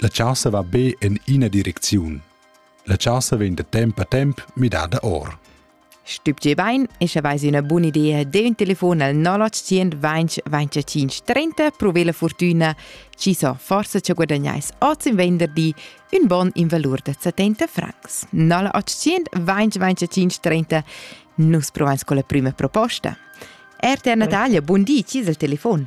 La chasa va be en ina direcziun. La chasa vegn da temp a temp midada or. Stübge bain e sche vais üna buna idea de un telefon al 0800 20 25 30 prove la fortuna ci so forse ci guadagnais oz in venderdi un bon in valor da 70 francs 0800 20 25 30 nus provais con la prima proposta RTR Natalia, buon di, ci il telefon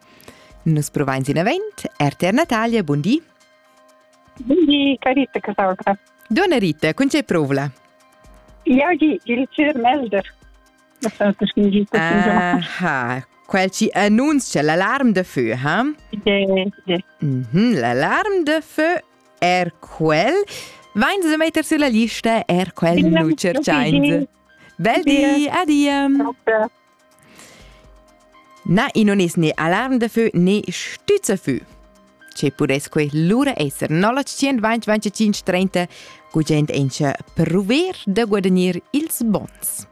Nus provain sin avent. RTR Natalia, bun di. Bun di, Carita Casalgra. Donna Rita, con c'è provla? Iagi, il Melder. Aha, quel ci annunzia l'alarm de feu, ha? Mm -hmm, l'alarm de feu er quel. Vain se metter sulla lista er quel nu cerchains. Bel di, adia. Na, i non es né alarm da fö né stüzza fö. Che pudess que lura esser 0925 30 gugent encha prover da guadagnir ils bons.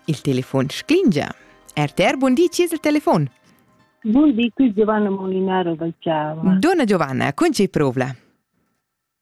Il telefon sclingia. RTR, bun di, ci es il telefon? Bun di, qui Giovanna Molinaro dal Chiava. Donna Giovanna, con ci provla?